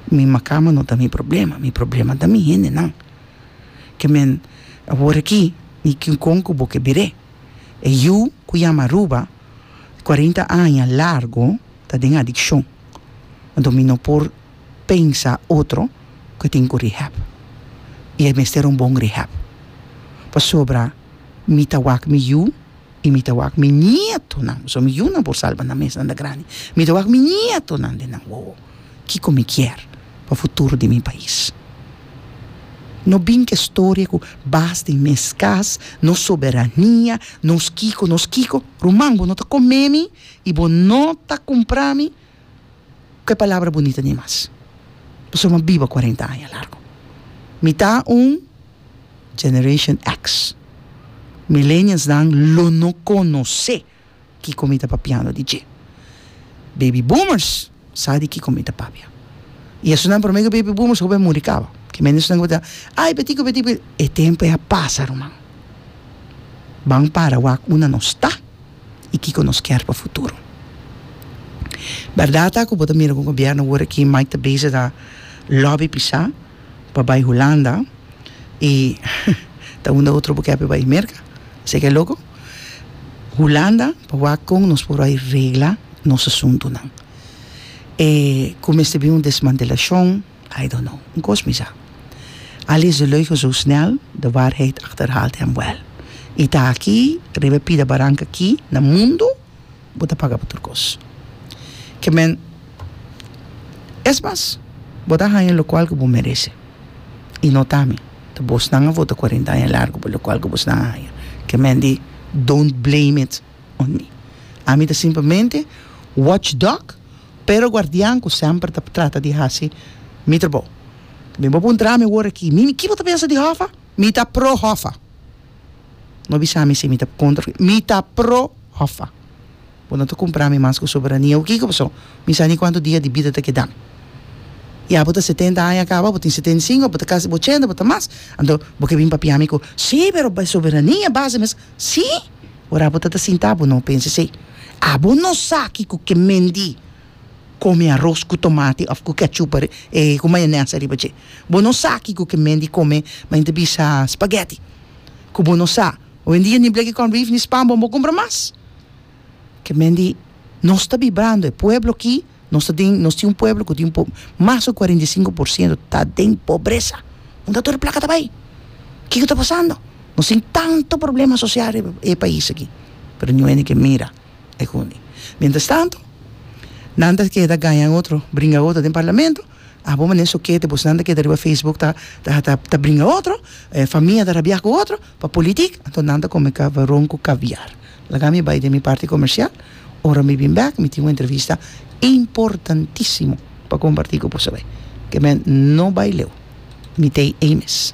Mi macama no ta mi problema, mi problema ta mi hendenan. Ke men a wor aki, di kincon cu bo ke bire. E yu cu yama Aruba, cuarenta aña largo ta den adiccion. Anto mi no por pensa otro cu e tin cu rehab. Y e mester un bon rehab. Pasobra mi ta wak mi yu I mi ta wak mi nietonan, so mi yunan por salba nan mesnan ta grandi, mi ta wak mi nietonan den nan wowo kiko mi kier pa futuro di mi pais. No bin ke storia ku bas den mes kas, nos soberania, nos kiko, nos kiko, ruman bo no ta komemi i bo no ta kumprami, ku e palabra bunita di mas. Pasobra mi a biba kuarenta aña largu. Mi ta un Generation X. Millennialsnan lo no konosé kiko mi ta papiando di dje. Baby Boomers sa di kiko mi ta papia. I esunnan promé ku Baby Boomers hopi a muri kaba. Ki mende esunnan ku bo ta ai p'etikui p'etikui. E tempu ei a pasa, ruman. Ban para wak una nos ta. i kiko nos kier pa futuro. Berdad ta ku bo ta mira ku gobierno wor aki Mike ta bezig a lobby pisa pa bai Hulanda i ta unda otro bo kier pa bai Merka esei ke loko? Hulanda pa wak kon nos por bai regla nos asuntunan e ku mester bin un desmantelashon. I don't know. Un kos mi sa. Al is de leugen zo snel, de waarheid achterhaalt hem wel. I ta aki, riba e pida baranka aki, na mundo, bo ta paga pa tur kos. Ke men, es mas, bo ta haña lokual ku bo merese. I no ta mi, ta bosnan a vota kuarenta aña largu pa lokual ku bosnan a haña. Ke men di, don't blame it. Ondi ami ta simplemente watchdog, pero guardian cu semper ta trata di haci mi trabou. Mi bo puntra mi awor aki, mi, ki bo ta pensa di Hoffa? Mi ta pro Hoffa. No bisa mi si mi ta contra of, mi ta pro Hoffa. Bo no ta cumpra mi mas cu soberania of kico, pasobra mi sa ni cuanto dia di bida ta keda mi. Ya bo ta setenta aña caba, bo tin setenta y cinco, bo ta casi ochenta, bo ta mas, anto bo ke bin papia mi cu, sí, pero soberania base mes. Sí! Ora bo ta ta sinta bo no pensa esei. Abo no sa kiko ke Mendy come aros ku tomate of ku ketchup ku mayones ariba dje. Bo no sa kiko ke Mendy come ma yinta bisa spaghetti. Ku bo no sa hoendia ni bleki corn beef ni span bo no bo kumpra mas. Ke Mendy nos ta bibrando e pueblo aki. Nos ta den, nos tin un pueblo cu tin po, mas cu cuarenta y cinco por ciento ta den pobresa. Unda tur e placa ta bay? Kico ta pasando? Nos tin tanto problema social riba e pais aki, pero ni un hende ke mira e hunde. Mientras tanto, nan ta keda gaña otro, bringa otro den parlamento, abo mane sokete bo, si nan ta keda riba facebook ta, ta, ta, ta bringa otro, e famia ta rabia cu otro, pa politic, anto nan ta come caveron cu caviar. Laga mi bay den mi parti comercial. Ora mi bin bek mi tin un entrevista importantisimo pa comparti cu boso bay, ke men no bay leu, mi tey ey mes.